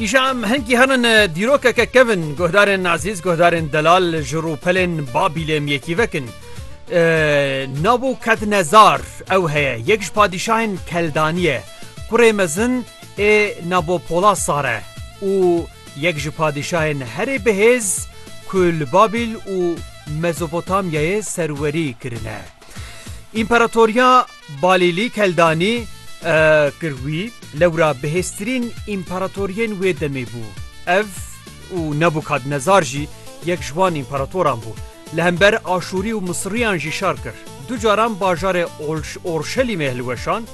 Îşa em hinkî herin dîrokeke kevin guhdarên Azîz, guhdarên Delal ji rûpelên Babîlê em yekî vekin. Nabû Kednezar ew heye yek ji padîşahên Keldaniye. Kurê mezin ê nabo Pola Sare û yek ji padîşahên herê bihêz ku li Babîl û Mezopotamyayê serwerî kirine. Împaratoriya Balîlî Keldanî, kir wî, lewra bihêztirîn împaratoriyên wê demê bû. Ev û Nebûkadnezar jî yek ji wan împaratoran bû. Li hember Aşûrî û Misiriyan jî şer kir. Du caran bajarê Orşelîmê hilweşand.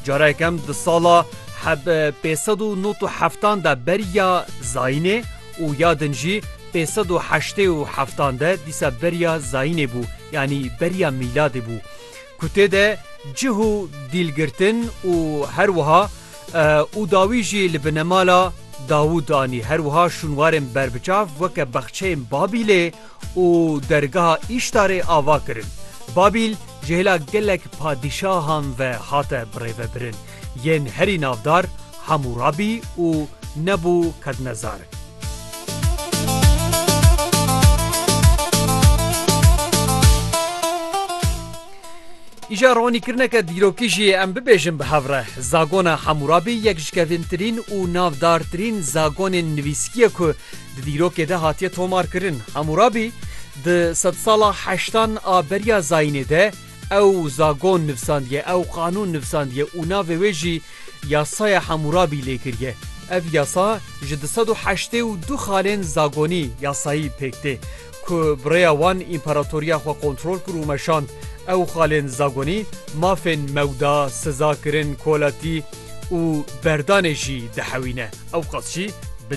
Cara yekem di sala heb pênc sed û nod û heftan de ber ya Zayînê û ya din jî pênc sed û heştê û heftan de dîsa ber ya Zayînê bû, yanî ber ya mîladê bû. ku tê de cih û dîlgirtin û her wiha û dawî jî li binemala Dawûd anî her wiha şûnwarên berbiçav weke bexçeyên Babîlê û dergeha Îştarê ava kirin. Babîl ji hêla gelek padîşahan ve hate birêvebirin. yên herî navdar Hamûrabî û Nebû Kadnezar. Îşa ronîkirineke dîrokî jî em bibêjin bi hev re. Zagona Hamûrabî yek ji kevîntirîn û navdartirîn zagonên nivîskî ye ku di dîrokê de hatiye tomarkirin. Hamûrabî di sedsala heştan a beriya zayînê de, Ew zagon nivsandiye, ew qanûn nivsandiye û navê wê jî Yasaya Hamûrabî lê kiriye. Ev yasa ji du sed û heştê û du xalên zagonî, yasayî, pêk tê. Ku bi rêya wan împaratoriya xwe kontrol kir û meşand. Ew xalên zagonî mafên mewda, sizakirin, kolatî û berdanê jî dihewîne. Ewqas jî.